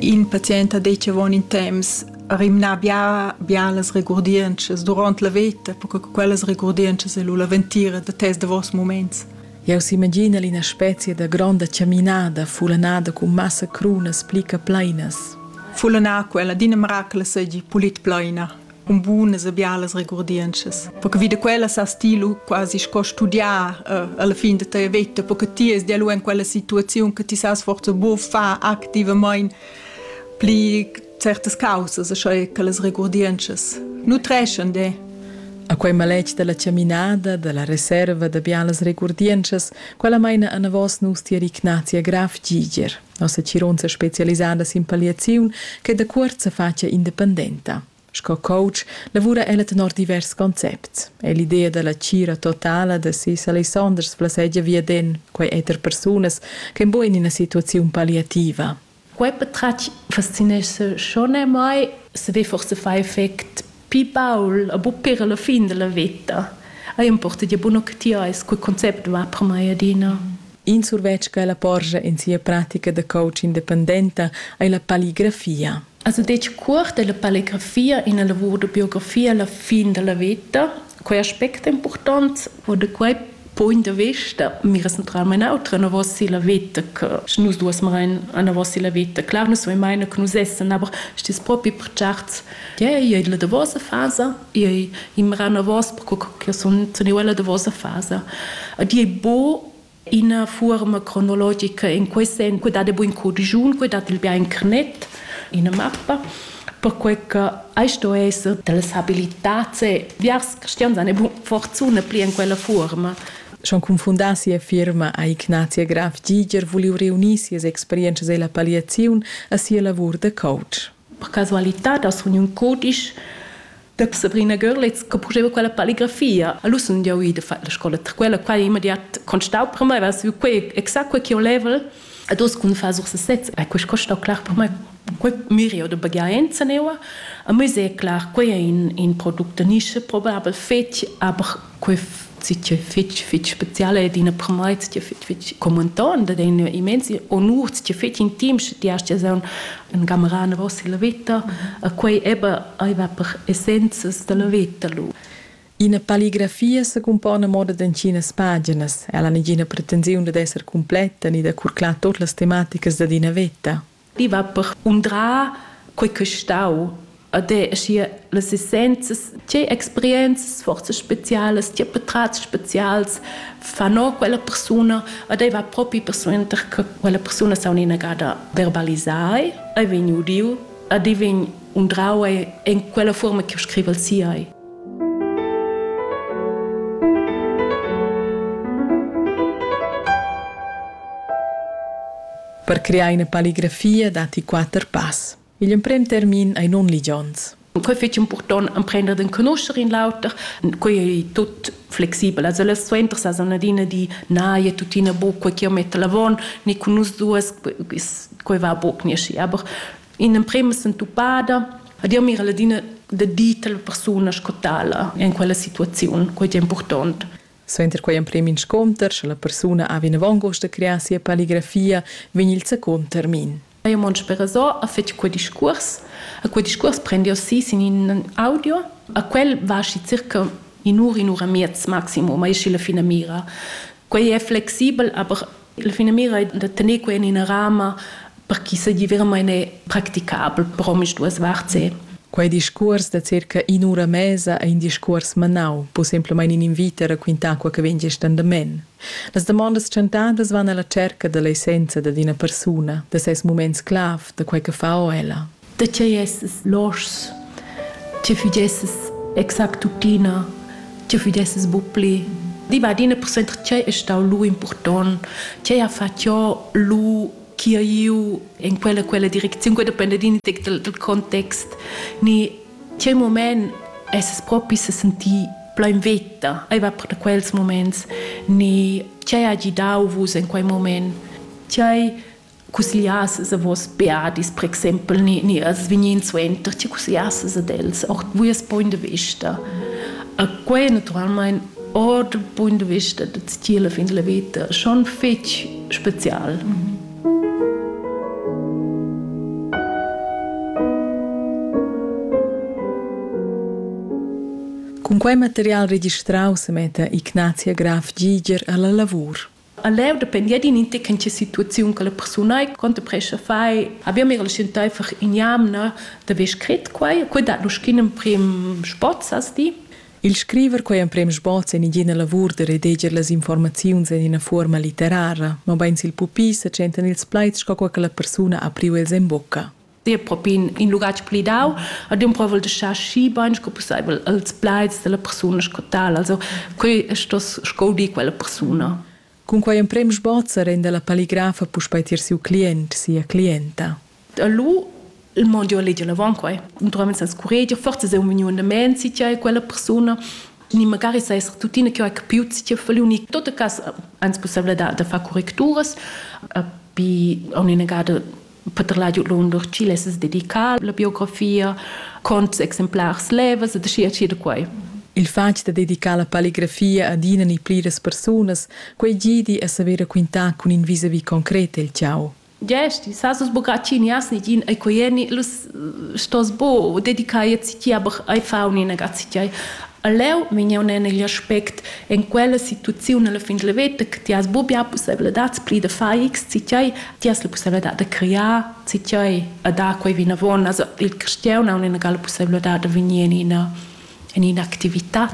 In patient ha detg avon in temps rimnà bia bia las regurdientschas duront la veta, perche che quellas regurdientschas ei lu la ventira da tes davos muments. Jau s'imaginel ina specia da gronda chaminada fulanada cun massa crunas pli che pleinas. Fulanà quella d'ina miracle seigi pulit pleina. cun bunas e bialas regurdientschas. Perché vi da quella sas ti lu quasi sco studiar uh, alla fin da tua vita, perché ti es dia lu in quella situaziun che ti sas forza bu fa activament pli certas causas, sche che las regurdientschas nutreschan de. A quei maletg dalla chaminada, dalla reserva da bialas regurdientschas, quella meina anavos nus ti Ignazia Graf Giger. Nossa tgironza spezialisada sin palliaziun che da cuort sa facia independenta. Sco coach lavura ella tenor divers concepts. È l'idea dalla tgira totala da sis Alessanders flassegia viaden quei eter persunas ch'en buc en ina situaziun palliativa. Quei patratg fascinescha schon a mei. Sche forse fai effect Pi baul a buc ir alla fin dalla veta. Ei importa gia buca che ti eis quei concept va per mei adina. In survetsch che la porscha en sia pratica da coach independenta ei la palligrafia. Also detg cuort è la palligrafia ina lavur da biografia alla fin dalla veta. Quei aspect è impurtont, wo de quei Point da vista, mi recentrarem in autra anavos la veta che sche nus duas main anavos la veta. Clar, nus vein maina che nus essen, aber stis propi per certs. Ja, io è la davosa fasa, io imra anavos perché che sun teniu la davosa fasa. Ed è bo ina forma cronologica in quei sen, que dat buin codigiun, que dat il bien carnet, ina mappa. perquei che ei sto esser dallas habilitats e biars cristians han bu fortuna pli en quella fuorma. Schon confundar sia firma ha Ignatia Graf Giger vuliu reunir sias experientschas ella palliaziun a sia lavur da coach. Per casualitad ha suniu in cudisch da Sabrina Görlitz che purteva quella palligrafia. A l'us sun jau ida fatg la scola, tra quella quai immediat constau per mai, va su quei exact quei che ho level. Ad os kun fa sur sesez, e questo costa clar per me quei mirio de bagaenza neua. A me è clar, quei è in, in product de nische probabel fetg, aber quest fitg fitg spezial ed ina promai ti fitg fitg commentan da den immensi onur ti fitg intim sche ti hast un un gamarana vossa la vita a quei eba ai va per essenzas da la vita lu Ina palligrafia se compone moda d'encinas paginas. Ella ha negina pretensiun dad esser completa ni da curclar tot las tematicas da ina veta. I va per undrar quei ch'ei stau ad è, sche las essenzias, tgei experienzas, forzas specialas, tgei patratgs specials fan o quella persuna, ad ei va propi persuenter che quella persuna s'ha un'inagada verbalisai, ei vegn udiu ad ei vegn undrau en quella fuorma ch'jeu scrivel si ei. per crear ina palligrafia datti quatter pass. Igl emprem termin ei nunligions. Quei fetg impurtont emprender d'enconoscer in l'auter. Quei ei tut flexibel. Also las suenter sa san adina di na, e tuttina bu quei che metta l'avon, ni con nus duas, quei va buc ni aschi. Aber in emprema sentupada Dir mira la dina da di la persuna sco tala in quella situaziun, quei è important. Suenter quei emprem inscunter, sche la persuna ha vinavon gust da crear sia palligrafia, vegn il secund termin. Mio mond spereso ha fatg quei discuors. A quei discuors prendiu si sin in audio. A quel va schi circa in'ura, in'ura miez maximum, ei schi la finamira. Quei è flexibel, aber La finamira è da tener quai en ina rama per ch'i seigi veramain practicabel per omisduas varts. Quei discuors da circa in'ura mesa ei in discuors manau, pusemplamein in invit a raquintar quei che vegn gest endament. Las damondas tschentadas van alla tscherca dall'essenza dad ina persuna, da ses muments clav, da quei che fa o ella. da tgei esses loschs, tgei fugesses exact tuttina, tgei fugesses bu pli. Di va adina persuenter tgei è stau lu impurtont, tgei ha fatg jo lu chi ha iu in quella quella direcziun, quella dependa din del, del context, ni tgei moment esses propi se sentì plein veta, ei va per da quels moments, ni tgei ha gidau vus in quei moment, tgei cussgliassas a vos beadis, per exempel, ni, ni als vegnin suenter, ti cussgliassas ad els, ord vus punt de vista. A quei naturalmein ord punt de vista de tiela fin la vita, schon fetg special. Mm -hmm. Cun quei material registrau semetta Ignazia Graf Giger alla lavur. A leu dependia din in tec che situaziun che la persuna contemprescha fai. Abbiamo era scientific in jamna da ve scrit quai. Quei dat lu schin emprim spots, as di. Il scriver quei emprem sboz en ina lavur da redeger las informaziuns en ina fuorma litterara, mobein sil pupi se tschentan ils plaids sco quei che la persuna ha priu els en bucca. dir propi in, in lugatg plidau ad un provel de schar schi bein sco pusseivel als plaids della persona sco tal also quei sto sco di quella persona Cun quei emprem sbozzer en della palligrafa puspei tier siu client, sia clienta. Lu il mondo a leger l'avant quai. Naturalmente senza curreggio, forse sei un vegnu andament si c'è quella persona ni magari sei tuttina che ho capiut si c'è feliu ni tot cas ans possibile da da far correcturas a pi a un'inegada Peter la giu lun lur chile es dedicar la biografia con exemplars levas e da sia da quai. Il fatg da dedicar la palligrafia ad ina ni pliras persunas, quei gidi a saver raquintar cun in visavi concret il ciao. Gesti, sa sus bogaccini asni gin ai coieni lus stos bo dedicai ci ti aber ai fauni na gazzi ti Aleu vegniu nel igl aspect en quella situaziun alla fin la veta che ti has buca possibilità pli da far x ci ti ti has la pussibilità da creare si tiai e da quei vinavon. Also, il cristian ha una la pussibilità da venir in ina in un'attività.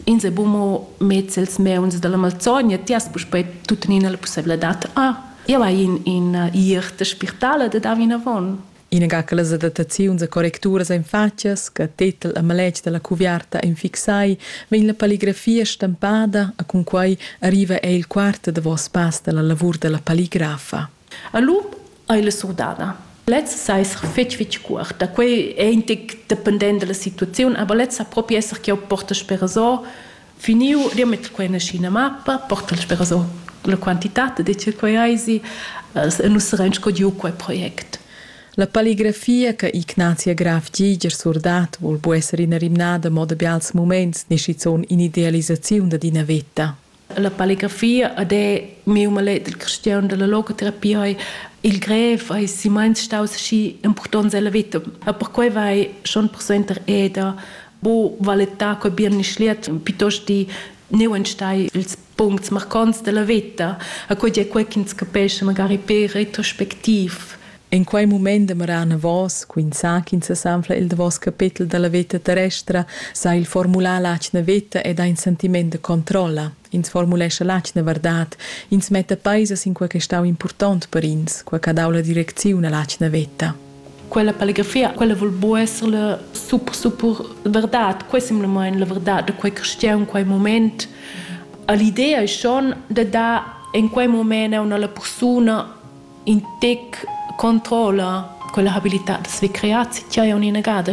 In se bumo mezz els meuns dalla Malzogna, ti hast puspei tuttenina la pussibilità, ah, io vai in, in ir de spirtale da da vinavon. Inaga che las adattaziuns e correcturas ein fatgas, che tetel e maletg dalla cuviarta ein fixai, vegn la palligrafia stampada e cun quei arriva ei il quart davos pass dalla lavur dalla palligrafa. A lu ei la surdada. Lez sa esser fetg fetg cuort, da quei ei in tec dependent dalla situaziun, aber lez sa propi esser ch'jeu portesch per resort Finiu riamet quei ina scina mappa, portal spera so la quantitat de che quei eisi, nus sarein sco giu quei project. La palligrafia che Ignatia Graf Giger surdat vul bu esser ina rimnada mo da bials muments ni schizun in'idealisaziun dad ina veta. La palligrafia ed è miu malet il cristian dalla logoterapia ei il grev ei si meins staus schi impurtonts ella veta. E perquei vai schon persuenter eda Bo valetta qua Birnischliet piuttost di neu enstei ils puncts marcants della veta, a quei è quei ch'ins capesce magari per retrospectiv. En quei mument demoran vos, quin sa ch'ins sesanfla il davos capetel dalla veta terrestra, sa il formular l'atgna veta ed ha in sentiment de controlla. Ins formulescha l'atgna verdad, ins metta peisas in quei che stau impurtont per ins, quei che ha dau la direcziun all'atgna veta. Quella palegrafia, quella vul buca esser la super, super verdad. Quei è simplamain la verdad da quei cristian, quei moment. L'idea è schon de dar in quei moment a una persona in tec controlla quella habilità da se creare se c'hai un'inegada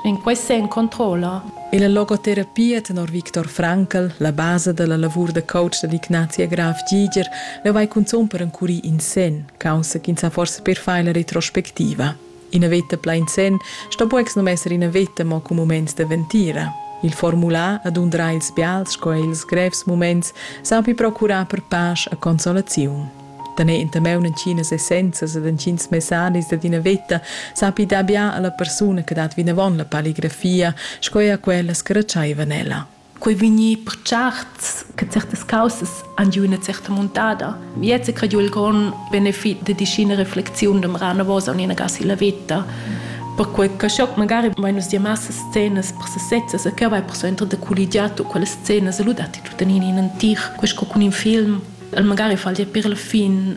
in quei sen controlla. E la logoterapia tenor Viktor Frankl, la basa della lavur da coach dell'Ignazia Graf Giger, la vai cunzon per encurir in sen. caussa ch'ins ha forsa per far la retrospectiva. Ina veta plain senn sto buc sum esser ina veta mo cun muments da ventira. Il formular ad undrar ils bials sco er ils grevs muments sapi procurar per pasch e consolaziun. Tener entameun en chinas essenzas ed en chins messadis dad ina veta sapi dar bia alla persuna che dat vinavon la palligrafia sco er a quellas che retscheivan ella. quei vegni per certs che certas causas han giu una certa montada. Jetzt crediu il grond benefit de dischina reflexiun dem Ranavosa und in gasi la vita. Perché che schoc magari vai nus dir massa scenas per sesezza se che vai per so entro de colligiato quelle scene se ludati tutto in in antic questo con in film el magari fa dir per la fin